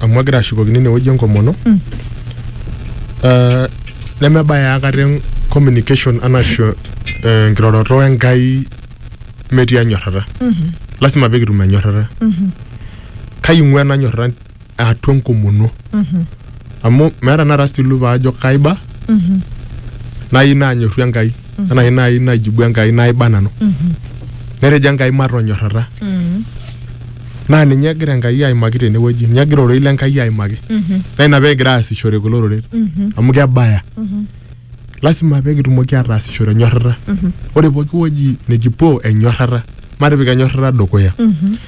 amu agira ashukokino inewueji enkomono Eh, nemebaya aikata en- communication anashu eh, enkiroroto enkai metii enyorrata lasima pee kitum enyorrata kai ing'ua ena nyorrata atua enkomono amu meeta nara stilu paajo kaiba nayieu naanyorru enkai anaa nai najibu Enkai naiba nanu. Netejo Enkai matonyorrata. Naa ninye egira Enkai aimaki tenewueji, ninye egira ororei le Enkai aimaki. Naa ina peegira aasishore kulo oreren amu kebaya. Lasima peekitumoki ataasishore enyorrata. Ore pooki wueji nikipuo enyorrata, matipik enyorrata dukuya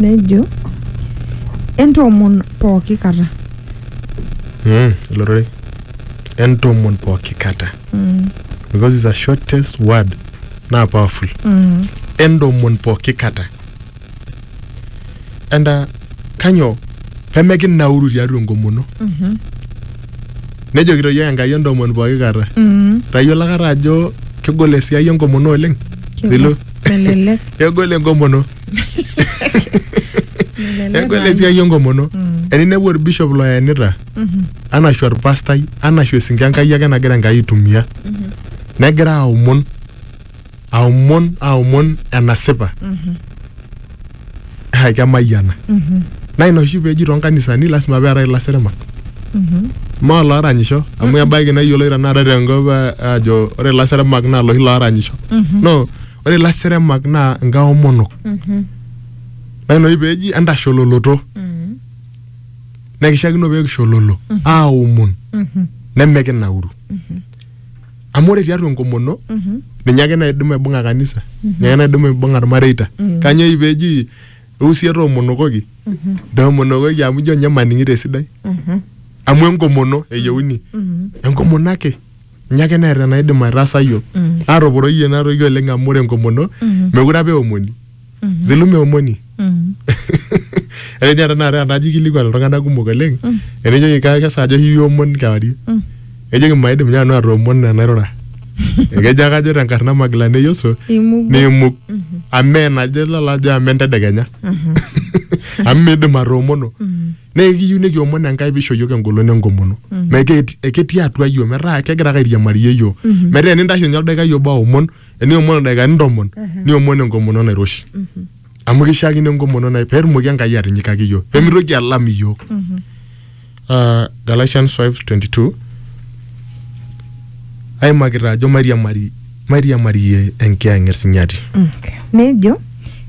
nejo entoomon pooki kata Mm, ilo rorei entomon pooki kata Mm, because it's a shortest word naa powerful mm, entomon pooki kata and uh, kanyoo pemekinauru tiatua enkomono mhm, nejokito yiok enkai entomon pooki kata mm. tayiolo akata ajo kegol esiai enkomono oleng Kegol. Zilo melelek kegol enkomono melelek kegol naa. esiai enkomono eninepu orbishop loyenita anashu orpastai anashu esinke enkai ake nagira enkai aitumia negira aomon aomon aomon enasipa eh, kemayiana naa ina oshi peeji toonkanisani lasima peetae ilasirimak maa looranyisho amu ebaiki nayioloi tenakata tenkop eh, ajo ore ilasirimak naa loshi looranyisho no ore ilasirimak naa nkaomonok naa ina oshi peeji entashololoto nekishakino peekishololo aomon nemekinauru amu ore tiatua enkomono ninye ake naidim aibung'a kanisa ninye ake naidim aibung'a irmareita kanyioo eji peji eusie toomonokoki toomonokoki amu ijo ninye maning'ito esidai amu enkomono eyieuni enkomono ake ninye ake neeta enaidim aitaasa yiok atoporoyie ena toki oleng amu ore enkomono mekure apa eomoni zilume omoni ekejo tenakata enaji ikilikuan iltung'anak kumok oleng enejoki "Ka- kesaaja oshi iyieu omon kewarie ejoki maidim ninye nanu atoomon enairura ekejo ake ajo tenkarna magila neyoso Imugu. niimug amu mee najo lala ajo amu entedekenya amu miidim atoomono naa ekiyieu nikiomon enkai pisho yiok engolon enkomono metaa eti- eketii atua yiok metaa kegira ake airiamariyie yiok metaa enintashe ninye oldaikai obo aomon eniomon ildaikani ntomon niomon enkomono nairoshi amu kishiakino enkomono nai peetumoki enkai atinyikaki iyiook pemitoki alam iyiook Ah, Galatians 5:22 aimakita ajo mairiamari mairiamarie enkiyang'et sinyati Okay. nejo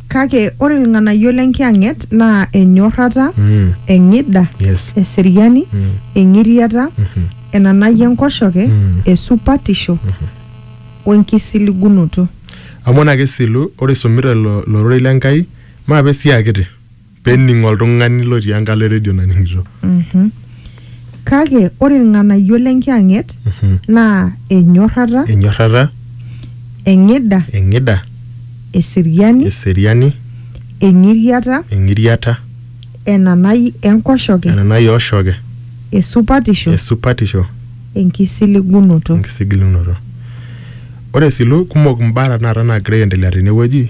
kake ore ilng'anayio lenkiyang'et naa enyorrata Mm, eng'ida yes eseriani Mm. eng'iriata Mhm. enanai enkoshoke Mm. esupatisho we nkisiligunoto. Amu ena kisilu, ore isumita ilo ilo rorei le Nkai, maape esiaa kiti pee ening oltung'ani lotii enkalo e redio naning'ito. Mhm. Kake ore ilng'anayio le Nkiyang'et naa enyorrata, Enyorrata, eng'ida, eng'ida, eseriani, eseriani, eng'iriata, eng'iriata. enanai enkoshoke, enanai oshoke, esupatisho, esupatisho, enkisiligunoto. enkisigilunoto. Ore sii kumok imbaa tenakata naagira aendelea tenewueji.